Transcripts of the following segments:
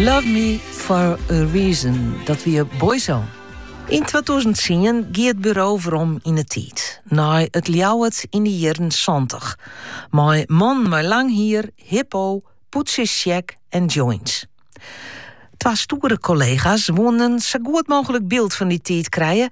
Love Me For A Reason, dat wie Boyzone. Yn 2010 gie it buro werom yn 'e tiid, nei it Ljouwert yn de jierren santich, mei mannen mei lang hier, Hippo, pûdsjes sjek en joints. Twa stoere kollega's woenen sa goed mooglik byld fan dy tiid krije,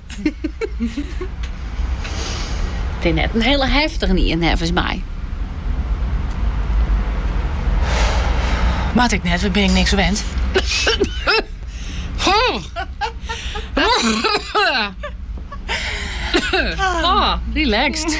It is net in hiele heftige ien neffens my. Moat ik net, want bin ik niks wend. oh, relaxed.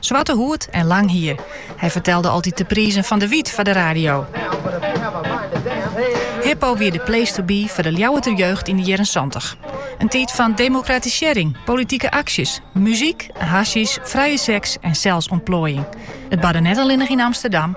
Swarte hoed en lang hier. Hy fertelde altyd de prizen fan de wyt foar de radio. Hippo wie de place to be foar de Ljouwerter jeugd yn de jierren 70. In tiid fan demokratisearring, politike aksjes, muzyk, hasjysj, frije seks en selsûntploaiing. It barde net allinnich yn Amsterdam,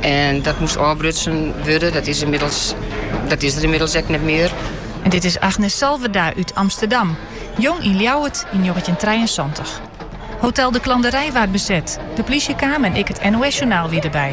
En dat moest ôfbrutsen wurde. Dat is, ynmiddels, dat is der ynmiddels ek net mear. En dit is Agnes Salverda út Amsterdam, jong yn Ljouwert yn njoggentjintrijeënsantich. Hotel De Klanderij waard beset, de plysje kaam en ek it NOS-journaal wie derby.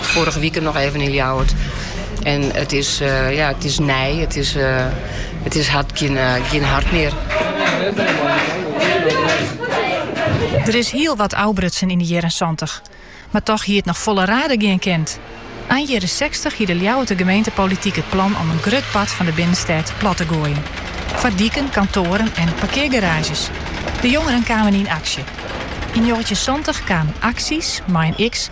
Foarige wike noch even yn Ljouwert. En it is, eh, ja, it is nij. It is, eh, it is hart, gjin, eh, gjin hart mear. Der is hiel wat ôfbrutsen yn de jierren santich. Mar toch hie it noch folle raarder gean kend. Ein jierren sechstich hie de Ljouwerter gemeentepolityk it plan om in grut part fan de binnenstêd plat te goaien. Foar diken, kantoaren en parkeargaraazjes. De jongeren kamen yn aksje. Yn njoggentjin santich kamen Axies, mei in x,